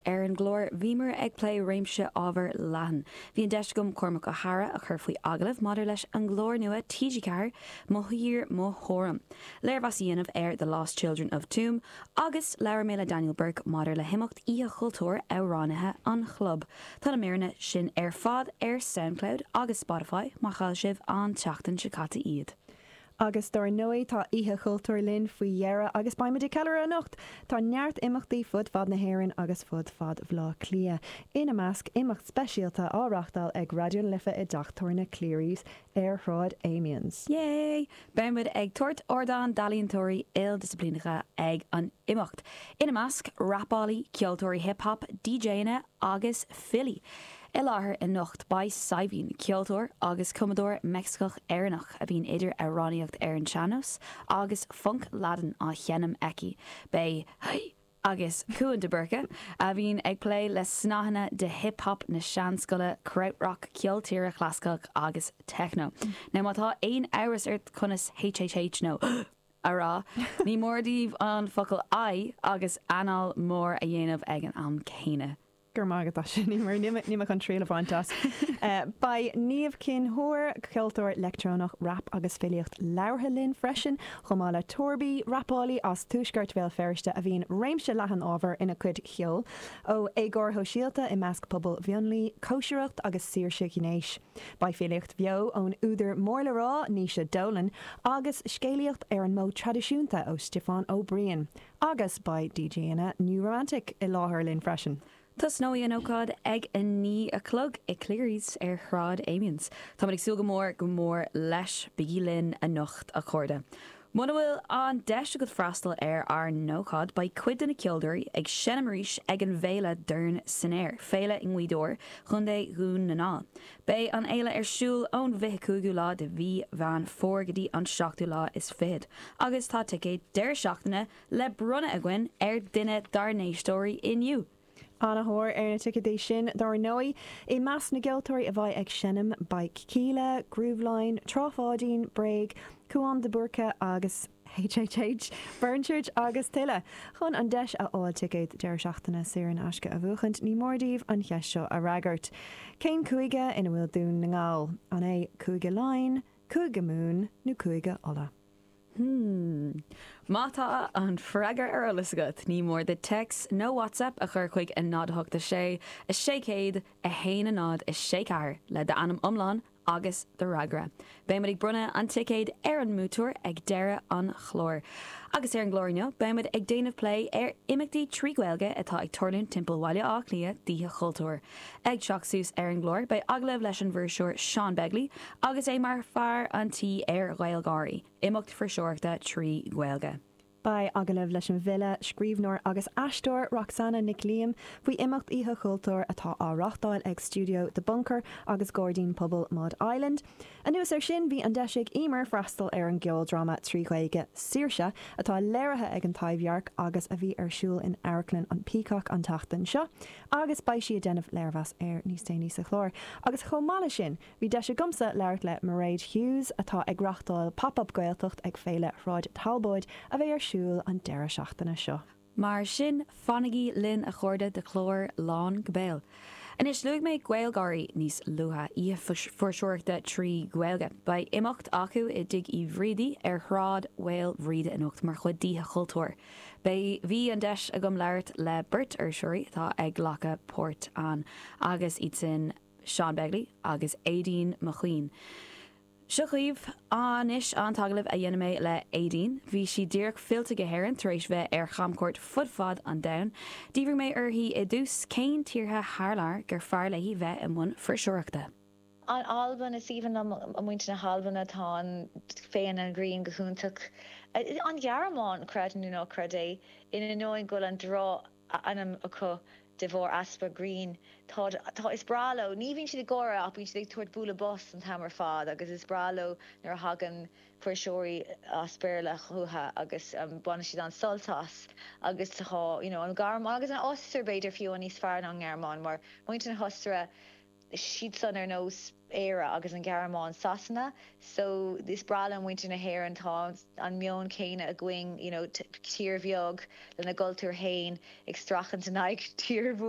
Ar an gclár, bhíomar ag plé réimse ábhar leathan. Bhí an deis agam Cormac Ó hEadhra a chur faoi agallamh maidir leis an gclár nua TG4, Mo Thír, Mo Thuairim, léirmheas a dhéanamh ar The Lost Children of Tuam agus labhair mé le Daniel Burke maidir le himeacht Oíche Chultúir Amhránaithe an Chlub. Tá na míreanna sin ar fad ar Soundcloud agus Spotify, má chaill sibh an tseachtain seo caite iad. Agus dár ndóigh tá Oíche Chultúir linn faoi dheireadh agus beimid ag ceiliúradh anocht! Tá neart imeachtaí fud fad na hÉireann agus fud fad Bhleá Cliath, ina measc imeacht speisialta á reáchtáil ag Raidió na Life i dteach tabhairne Cleary's ar Shráid Amiens. Yay! Beimid ag tabhairt ardán d'ealaíontóirí ildisciplíneacha ag an imeacht, ina measc rapálaí, ceoltóirí hip hop, DJanna agus filí. I láthair anocht beidh Saidhbhín, ceoltóir agus cumadóir Meicsiceach-Éireannach a bhíonn idir amhránaíocht ar an sean-nós agus func Laidin á sheinm aici, beidh Hey! agus Cúán de Búrca, a bhíonn ag plé le snáitheanna de hip hop na seanscoile, krautrock, ceol tíre chlasaiceach agus techno. Now má tá aon amhras ort conas HHH nó. a rá, ní mór daoibh an focal 'I' agus anáil mhór a dhéanamh ag an am céanna. Go raibh maith agat as sin, Eimear. Níl mé chun triail a bhaint as. Beidh Niamh Chinn Óir, ceoltóir leictreonach, rap agus filíocht labhartha linn freisin, chomh maith le Torby, rapálaí as tuaisceart Bhéal Feirste a bhíonn réimse leathan ábhar ina cuid cheoil, ó éagóir shóisialta i measc pobal mhionlaigh, cóisireacht agus saoirse ghnéis. Beidh filíocht bheo ón údar mór le rá, Naoise Dolan, agus scéalaíocht ar an modh traidisiúnta ó Stiofán Ó Briain, agus beidh DJanna New Romantic i láthair linn freisin. Tosnóidh an ócáid ag a naoi a chlog i Cleary's ar Shráid Amiens. Táimid ag súil go mór go mór leis. Bígí linn anocht, a chairde. Muna bhfuil an deis agat freastal ar ár n-ócáid, beidh cuid de na ceoltóirí ag seinm arís ag an bhféile Dorn San Aer, féile i nGaoth Dobhair, Co. Dhún na nGall. Beidh an fhéile ar siúl ón bhfiche cúigiú lá de mhí Mheán Fómhair go dtí an seachtú lá is fichead, agus tá ticéad deireadh seachtaine le bronnadh againn ar duine dár n-éisteoirí inniu! Ana thóir ar na ticéadaí sin dár ndóigh. I measc na gceoltóirí a bheidh ag seinm beidh Kíla, Grooveline, Trá Pháidín, Bréag, Cúán de Búrca agus HHH, Burnchurch agus tuilleadh. Chun an deis a fháil ticéad deireadh seachtaine saor in aisce a bhuachaint ní mór daoibh an cheist seo a fhreagairt. Cén cúige ina bhfuil Dún na nGall? An é Cúige Laighin, Cúige Mumhan nó Cúige Uladh? Hmm. Má tá an freagra ar eolas agat, ní mór duit téacs nó whatsapp a chur chuig a 0 8 6 6 101 0 6 4 le d'ainm iomlán agus do fhreagra. Beidh muid ag bronnadh an ticéid ar an mbuaiteoir ag deireadh an chláir. Agus ar an gclár inniu, beidh muid ag déanamh plé ar imeachtaí trí Ghaeilge atá ag tarlúint timpeall Bhaile Átha Cliath d'Oíche Chultúir. Ag teacht suas ar an gclár beidh agallamh leis an bhfuirseoir Seán Begley agus é mar fear an tí ar GhaelGÁIRÍ, imeacht fuirseoireachta trí Ghaeilge. Beidh agallamh leis an bhfile, scríbhneoir agus aisteoir Roxanna Nic Liam faoi imeacht Oíche Chultúir atá á reáchtáil ag Stiúideo The Bunker agus Gairdín Pobail Mud Island. Anuas air sin bhí an deis ag Emer freastal ar an gceoldráma trí Ghaeilge 'Saoirse' atá léirithe ag An Taibhdhearc agus a bhí ar siúl in Amharclann an Peacock an tseachtain seo. agus beidh sí ag déanamh léirmheas air níos déanaí sa chlár. Agus chomh maith leis sin, bhí deis agamsa labhairt le Mairéad Hughes, atá ag reáchtáil Pop Up Gaeltacht ag Féile Shráid Thalbóid a bheidh ar siúl an deireadh seachtaine seo. Mar sin, fanaigí linn a chairde do chlár lán go béal! Anois, luaigh mé GaelGÁIRÍ níos luaithe, oíche fuirseoireachta trí Ghaeilge. Beidh imeacht acu i dTigh Uí Bhrídí ar Shráid Mhaoil Bhríde anocht mar chuid d'Oíche Chultúir. Beidh Bhí an deis agam labhairt le beirt fhuirseoirí atá ag glacadh páirt ann agus iad sin Seán Begley agus Aideen McQueen. Seo dhaoibh anois an t-agallamh a dhein mé le Aideen. Bhí sí díreach fillte go hÉirinn tar éis bheith ar chamchuairt fud fad an domhain. D'fhiafraigh mé uaithi i dtús cén tíortha thar lear gur fearr léi bheith i mbun fuirseoireachta. An Albain, Is aoibhinn liom muintir na hAlban tá an féith an ghrinn go hiontach An Ghearmáin, Creid nó ná creid é, in ainneoin go bhfuil an drochainm acu de bharr easpa grinn, táid, tá, is breá leo, ní bhíonn siad ag gáire ach bíonn siad ag tabhairt bualadh bos an t-am ar fad agus is breá leo nuair a thagann fuirseoirí as Béarla chucu agus baineann siad an-sult as agus tá, you know, an Ghearmáin agus an Ostair b'fhéidir fiú níos fearr ná an Ghearmáin mar muintir na hOstaire. siadsan ar nós Éire agus an Ghearmáin, Sasana so is breá le muintir na hÉireann, tá an meon céanna againn, you know tír bheag lena gcultúr fhéin ag streachailt in aghaidh tír mhór.